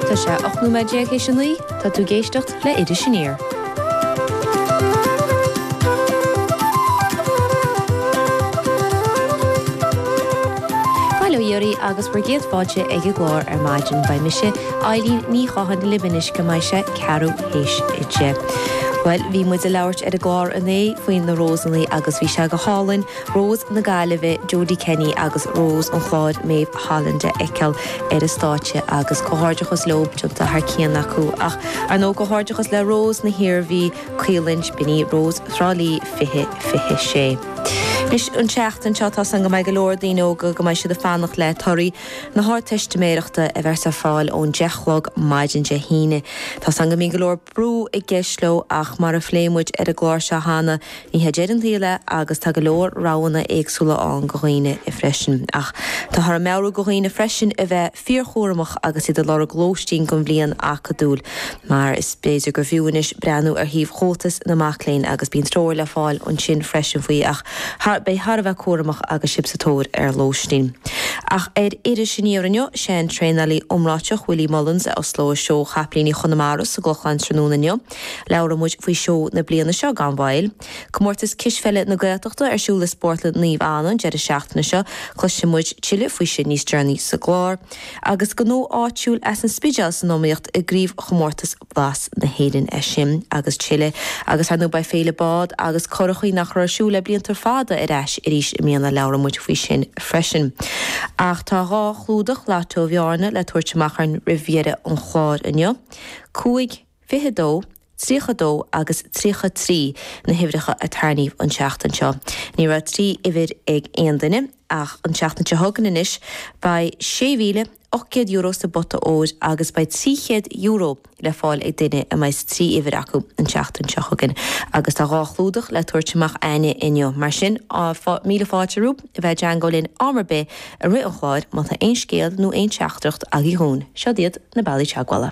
Tá sé 18 nóiméad théis a 9, tá tú ag éisteacht le Iris Aniar. Bail ó Dhia oraibh agus bhur gcéad fáilte ag an gclár ar maidin. Beidh mise, Eileen Ní Chatháin, libh anois go mbeidh sé ceathrú théis deich. Bhuel, bhí muid ag labhairt ar an gclár inné faoi na Rósannaí agus bhí sé go hálainn. Rós na Gaillimhe Jodie Kenny agus Rós an Chláir Méabh Holland a fheiceáil ar an stáitse agus comhghairdeachas leo, déanta thar cionn acu ach ar ndóigh comhghairdeachas le Rós na hIarmhí, Caolan Spinney, Rós Thrá Lí 2026. Anois an tseachtain seo tá a fhios againn go mbeidh go leor daoine óga go mbeidh siad ag fanacht le torthaí na hArdteistiméireachta a bheas ar fáil ón 10 chlog maidin Dé hAoine. Tá a fhios againn go mbíonn go leor brú i gceist leo ach mar a phléigh muid ar an gclár seo cheana Ní hé deireadh an tsaoil é agus tá go leor roghanna éagsúla ann go dhaoine freisin. Ach táthar ag meabhrú go dhaoine freisin a bheith fíorchúramach agus iad ag lorg lóistín don bhliain acadúil mar is b'fhéidir gur bhfiú anois breathnú ar shuíomh Chomhaltas na Mac Léinn agus bíonn treoir le fáil ansin freisin faoi ach a bheith thar a bheith cúramach agus sibh sa tóir ar lóistín. Ach ar Iris Aniar inniu, sé an traenálaí iomráiteach Willie Mullins a oslóidh seó Chapaillíní Chonamara sa gClochán tráthnóna inniu. Labhróidh muid faoi seó na bliana seo gan mhoill. Comórtas Cispheile na Gaeltachta ar siúl i Spórtlann Naomh Anna an deireadh seachtaine seo. Cloisfidh muid tuilleadh faoi sin níos deireanaí sa gclár. Agus gnó áitiúil as an Spidéal san iomaíocht i gCraobh Chomórtas Blas na hÉireann. É sin agus tuilleadh. Agus ar ndóigh beidh Féile Bád agus Curachaí, nach raibh ar siúl le blianta fada, ar ais arís i mbliana. Labhróidh muid faoi sin freisin. Ach tá dhá chlúdach Lotto Bhearna le tabhairt amach againn roimh dheireadh an chláir inniu. Cúig. 22, 32 agus 33 na huimhreacha a tarníodh an tseachtain seo. Ní raibh trí uimhir ag aon duine ach an tseachtain seo chugainn anois beidh €6,800 sa bpota óir agus beidh €300 le fáil ag duine a mbeidh trí uimhir acu an tseachtain seo chugainn agus tá dhá chlúdach le tabhairt amach a'inne inniu mar sin míle fáilte romhaibh a bheith i dteagmháil linn am ar bith i rith an chláir má tá aon scéal nó aon teachtaireacht agaibh dhúinn, siod iad na bealaí teagmhála.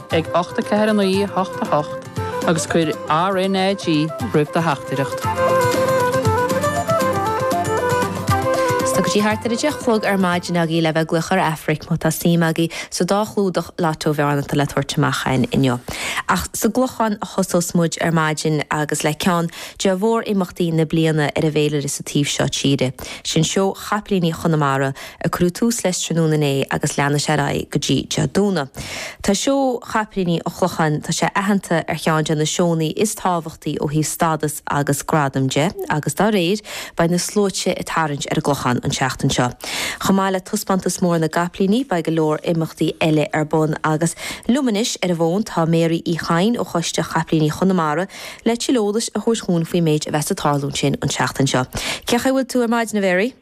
ag 8 4 9 8 8 agus cuir RNAG roimh do theachtaireacht. Tá go dtí thart ar a deich chlog ar maidin agaibh le bheith ag glaoch ar Aifric má tá suim agaibh sa dá chlúdach Lotto Bhearna atá le tabhairt amach againn inniu. Ach sa gClochán a thosós muid ar maidin agus le ceann de mhór-imeachtaí na bliana ar an bhféilire sa taobh seo tíre, sin Seó Chapaillíní Chonamara, a cuireadh tús leis tráthnóna inné agus leanfaidh sé ar aghaidh go dtí Dé Domhnaigh. Tá Seó Chaiplíní an Chlocháin, tá sé aitheanta ar cheann de na seónna is tábhachtaí ó thaobh stádas agus gradaim de agus dá réir, beidh na sluaite ag tarraingt ar an gClochán an tseachtain seo. Chomh maith le Taispeántas Mór na gCaiplíní, beidh go leor imeachtaí eile ar bun agus liom anois ar an bhfón tá Mary Uí Chadhain ó Choiste Chaiplíní Chonamara le tuilleadh eolais a thabhairt dhúinn faoin méid a bheas ag tarlú ansin an tseachtain seo. Cén chaoi a bhfuil tú ar maidin, a Mhary?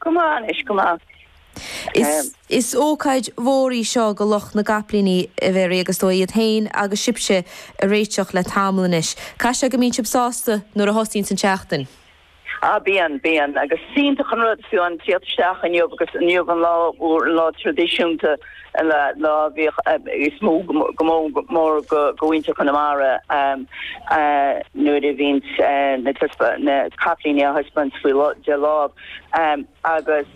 Go maith anois, go maith. Is ócáid mhór í seo go lucht na gCaiplíní, a Mhary, agus tá siad féin agus sibhse ag réiteach le tamall anois. Caithfidh sé go mbíonn sibh sásta nuair a thosaíonns an tseachtain? Ah, bíonn, bíonn. Agus is iontach an rud fiú an teacht isteach inniu agus inniu an lá mór, an lá traidisiúnta. an lá is mó go mór mór go mhuintir Chonamara nuair a bhíonns na caiplíní á dtaispeáint faoi de láimh agus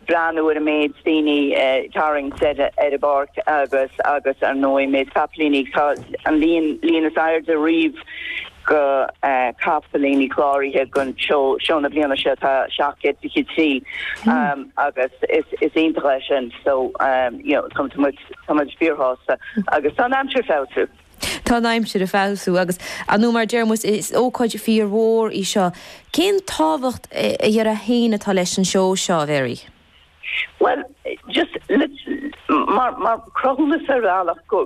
breathnú ar an méid daoine ag tarraingt ar an bpáirc agus ar ndóigh an méid caiplíní. Tá an líon is airde riamh. go chaiplíní cláraithe go sheó na bliana seo tá 723 agus is iontach é sin so you know tá muid fíor shásta agus tá an aimsir ag feabhsú. Tá an aimsir ag feabhsú agus ar ndóigh mar deir muid is ócáid fíor mhór í seo. Cén tábhacht a déarfá féin atá leis an seó seo a Mhary? Bhuel just mar cruthúnas ar bhealach go